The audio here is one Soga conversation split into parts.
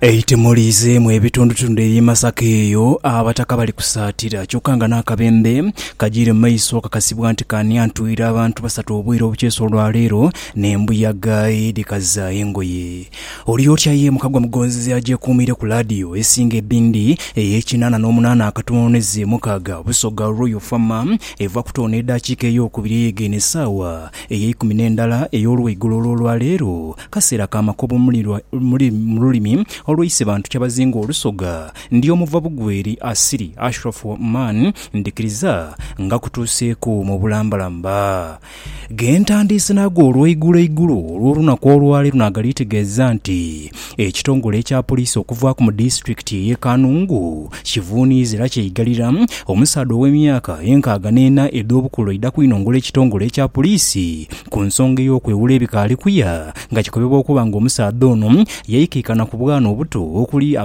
Eite muliizeemu ebitundutundu eby'e Masaka eyo abataka bali kusaatira kyokka nga n'akabembe kagiire mu maiso kakasibwa nti ka niantwire abantu basatu obwire obukyeeso lwa leero n'embuyaga edhikaza engoye. Oli otya ye Mukagwa Mugonzizi agyekuumiire ku laadiyo esinga ebindi ey'e kinaana n'omunaana akatono n'eze mukaaga Busoga Royal Fama eva kutono n'edaakiika eyookubiri ey'egeine esaawa ey'eikumi n'endala ey'olweigulo olw'olwaleero Kaseera ka makobo mu lulimi olweise bantu kyabazinga olusoga. Ndi omuva bugweri asiri Ashraf Oman ndhikiriza nga kutuuseeku mu bulambalamba ge ntandiise naago olweigulo igulo olw'olunaku olwaleero nagalitegeeza nti ekitongole ekya poliisi okuvaaku mu disitulikiti eye Kanungu Kivuuni ezira kyeigalira, omusaadha ow'emyaka enkaaga n'ena edh'obukulu aidha kwinongola ekitongole ekya puliisi ku nsonga ey'okwewula ebikaali kuya nga kikobebwa okuba nga omusaadha ono yaikaikana ku bwana obuto okuli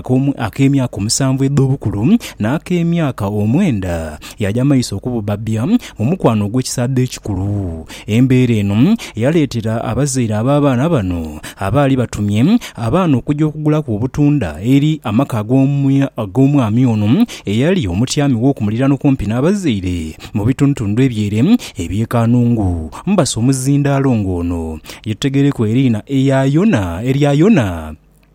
ak'emyaka omusanvu edh'obukulu n'ak'emyaka omwenda yaaja maiso okububbabya mu mukwano ogw'ekisaadha ekikulu. Embeera eno yaleetera abazaire ab'abaana bano abaali batumye abaana okuja okugulaku obutunda eri amaka ag'omwami ono eyali omutyami w'oku muliraano kumpi n'abazaire mu bitundutundu eby'ere eby'e Kanungu. Mbasa omuzindaalo ng'ono ye tuteghereku eriina erya Yona.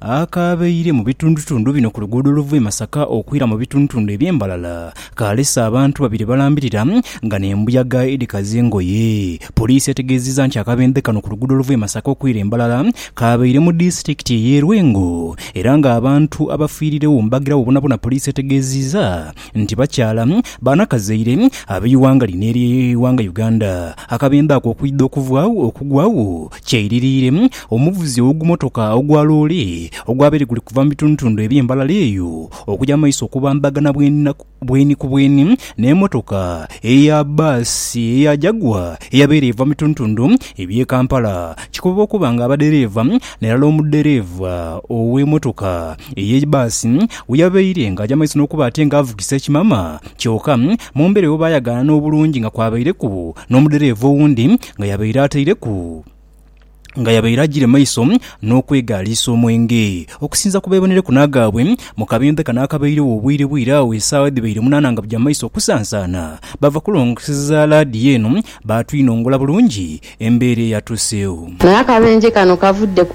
Akaabaire mu bitundutundu bino ku luguudo oluva e Masaka okwira mu bitundutundu eby'e Mbalala kaalese abantu babiri balambirira nga n'embuyaga edhikaza engoye. Poliisi etegeezezza nti akabenje kano ku luguudo oluva e Masaka okwira e Mbalala kaabaire mu disitulikiti ey'e Lwengo era ng'abantu abafiiriregho mbagiragho bonabona poliisi etegeezizza nti bakyala banakazaire ab'eighanga lino ery'eighanga Uganda akabenje ako okwidha okugwagho. Kyeiririire, omuvuzi ow'ogumotoka ogwa loole ogwabaire guli kuva mu bitundutundu eby'e Mbarara eyo okuja mu maiso okubambagana bweni ku bweni n'emotoka eya bbaasi eya Jaguar eyabaire eva mu bitundutundu eby'e Kampala kikoba okuba nga abadhereeva nairala omudhereeva ow'emotoka eye bbaasi weyabaire nga aja mu maiso n'okuba ate nga avugisa ekimama kyoka mu mbeera eyo baayagaana n'obulungi nga kwabaireku n'omudhereeva owundi nga yabaire ataireku nga yabaire agire maiso n'okwegaaliisa omwenge. Okusinza ku beebonereku n'agaabwe, mu kabembe kano akabairegho obwire bwire agho esaawa edhibaire munaana nga bugya maiso kusansaana, baava kulongoseza laadiyo eno baatwinongola bulungi embeera eyatuuseegho. Naye akabenje kano kavudde ku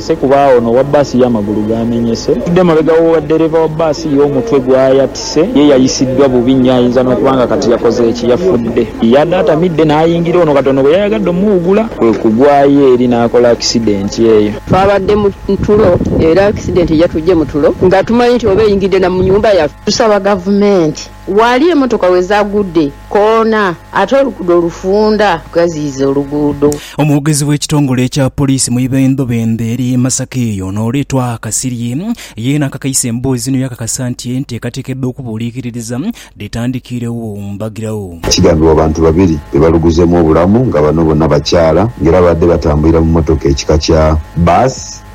Ssekubaawo n'owa bbaasi ye amagulu gaamenyese. Atudde mabega w'owa ddereeva wa bbaasi ye omutwe gwayatise. Ye yayisiddwa bubi nnyo ayinza n'okuba nga kati yakoze ki? Yafudde! Yade atamidde n'ayingira ono katono bwe yayagadde omuwugula kwe kugwayo eri n'akola akisidenti eyo. Twabadde mu tulo era akisidenti yatuggye mu tulo nga tumanyi nti oba eyingidde na mu nnyumba yaffe. Tusaba Gavumenti Ghali emotoka we zaagudde koona ate oluguudo olufunda ghaziyiza oluguudo. Omwogezi w'ekitongole ekya poliisi mu ibendobendo eri Masaka eyo n'oleetwa Kasirye yeena akakaise emboozi zino yaakakasa nti enteekateeka edh'okubuuliikiririza dhetandikiiregho mbagirawo. Kigambibwa abantu babiri be baluguzeemu obulamu nga bano bona bakyala nga era baabadde batambulira mu mmotoka ekika kya Bus.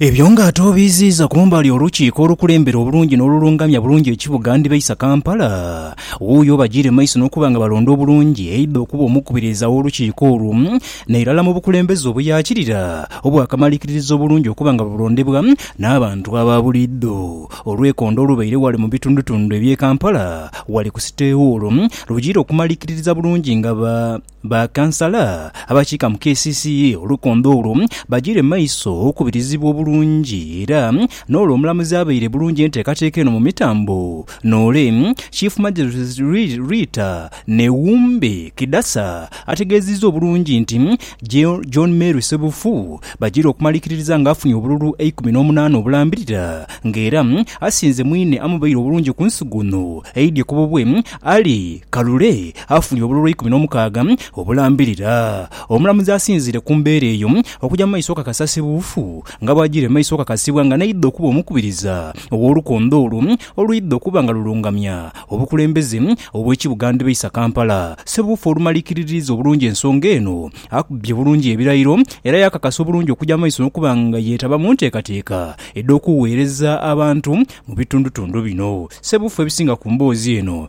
Ebyo nga ate obiiziiza kumbali olukiiko olukulembera obulungi n'olulungamya bulungi ekibuga ndibaisa Kampala, wuuyo obajiire mu maiso n'okuba nga balonda obulungi aidha okuba omukubiriza w'olukiiko olwo nairala mu bukulembeze obuyaakirira obwakamarikiririza obulungi okuba nga bulondebwa n'abantu aba buliidho olwekondo olubaire wale mu bitundutundu eby'e Kampala wale ku City Hall lujiire okumarikiririza bulungi nga Ba Kansala abakiika mu kcca olukondo olwo bagiire mu maiso okukubirizibwa obulungi era n'olwo Omulamuzi abaire bulungi enteekateeka eno mu mitambo noole Chief Magistrate Rita Newumbe Kidasa ategeezizza obulungi nti John Mary Ssebufu bagiire okumalikiririza nga afunye obululu eikumi n'omunaana obulambirira nga era asinze mwine amubaire obulungi ku nsigo ono eidhye ku bubwe Ali Kalule afunye obululu eikumi n'omukaaga obulambirira. Omulamuzi asinziire ku mbeera eyo okugya mu maiso okakasasibwa obufu nga bw'ajiire mu maiso okakasibwa nga n'aidha okuba omukubiriza ow'olukondo olwo olwidha okuba nga lulungamya obukulembeze obw'ekibuga ndhibaisa Kampala. Ssebuufu olumalikiriririza obulungi ensonga eno, akubye bulungi ebirayiro era yaakakasa obulungi okugya mu maiso n'okuba nga yeetaba mu nteekateeka edh'okuweereza abantu mu bitundutundu bino. Ssebuufu ebisinga ku mboozi eno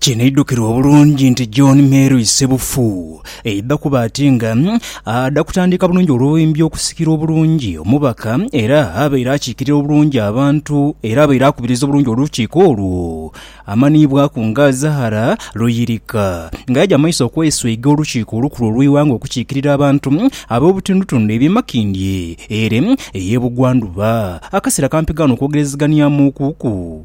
Kinaidhukirwa obulungi nti John Mary Ssebufu yaidha kuba ati nga adha kutandika bulungi olwoimbi okusikira obulungi omubaka era abaire akiikirira obulungi abantu era abaire akubiriza obulungi olukiiko olwo amanhiibwaku nga Zahara Luyirika nga yaja mumaiso okwesweiga olukiiko olukulu olweighanga okukiikirira abantu ab'obutundutundu ebye Makindye ere ey'ebugwandhuba. Akaseera kampi gaana okwogerezeganiamuuku ku.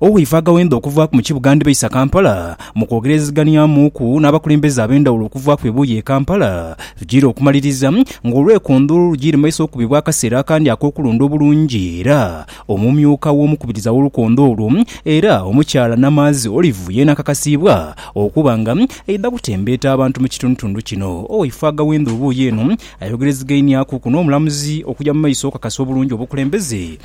Owaife agaghenda okuvaaku mu kibuga ndhibaisa Kampala mu kwogeraziganyamuuku n'abakulembeze ab'endhawulo okuvaaku ebuuyi e Kampala tujiire okumaliriza ng'olwekondho lujiire maiso okubibwa akaseera akandi ak'okulonda obulungi era omumyuka w'omukubiriza w'olukondho olwo era Omukyala Namaazi Olive yeena akakasiibwa okuba nga aidha kutembeeta abantu mu kitundutundu kino. Owaife agaghenda obuuyi eno ayogerezigainiakuku n'omulamuzi okuja mu maiso okukakasa obulungi obukulembeze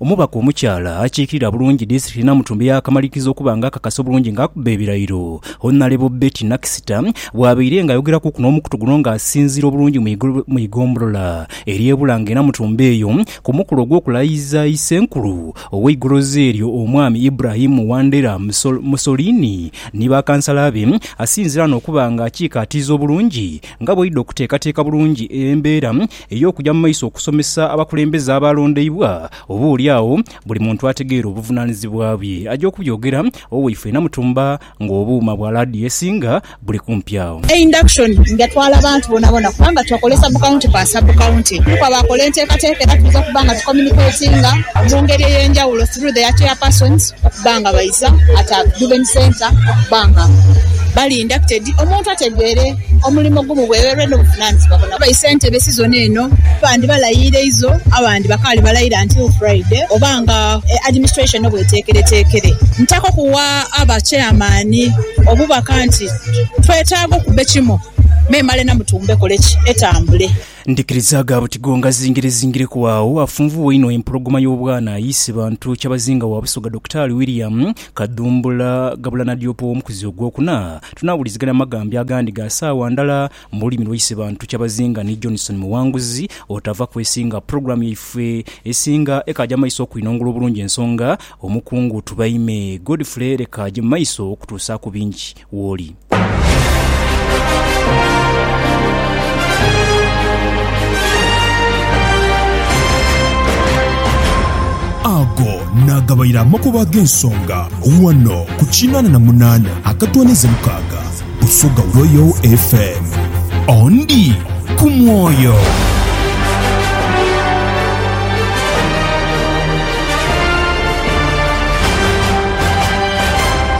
Omubaka omukyala akiikirira bulungi disitulikiti Namutumbi yaakamaliiriza okuba nga akakasa obulungi nga akuba ebirayiro. Honalebo Betty Nakisita bwabaire nga ayogerakuku n'omukutu guno nga asinziira obulungi mu igombolola ery'e Bulange e Namutumbi eyo ku mukolo ogw'okulayiza Isenkulu ow'eigolozi eryo Omwami Ibrahim Wandera Musolini ni bakansala be asinziira n'okuba nga akiikaatiiza obulungi nga bwaidha okuteekateeka bulungi embeera ey'okuja mu maiso okusomesa abakulembeze abaalondeibwa, oba oli agho buli muntu ategeere obuvunaanizibwa bwe. Aja okubyogera Oweifule Namutumba ng'obuuma bwa laadiyo esinga buli kumpi agho. Induction nga etwala abantu bonabona kubanga twakola sub county kwa sub county. Kuliku abaakola enteekateeka era twidha kuba nga tu communicatinga mu ngeri ey'enjawulo through their chairpersons okuba nga baidha at Juven Centre okuba nga bali inducted omuntu ategeere. Omulimo gumu bwegherwe n'obuvunanizibwa bona. Abayi sentebe sizoni eno bandi balayiira izo abandi bakaali balayiira until Friday oba nga administration no bweteekereteekere. Ntako kuwa aba chairman obubaka nti twetaaga okubbe kimu memale Namutumba ekole ki? Etambule. Ndhikiriza gha buti go ngazingirezingireku agho afunvubwa inho empologoma y'obwana ayiise bantu kyabazinga wa Busoga Dokitaali William Kadhumbula ghabula Nadiopa ow'omukuzi ogwokuna. Tunaawulizigana amaghambe agandi ga saawa ndala mu lulimi lwaise bantu kyabazinga ni Johnson Muwanguzi otava kwesinga. Pulogulaamu yaifwe esinga ekaaja mu maiso okwinongula obulungi ensonga, Omukungu Tubaime Godfrey leka aje mu maiso okutuusaaku bingi. wooli. Ago naagabaire amakubo ag'ensonga ghano ku kinaana na munaana akatwaniza mukaaga Busoga Royal FM. Ondi ku mwoyo.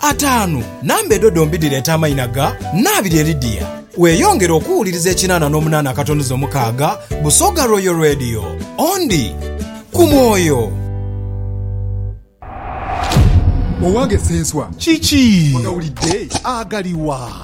Ataanu, Namba edho dhombi dhireeta amaina ga naabiri eri dia. Weeyongere okuwuliriza ekinaana n'omunaana akatonoza omukaaga Busoga Royal Radio. Ondi ku mwoyo. Owange Ssenswa. Kiki? Ogawulidde? Agaliwa?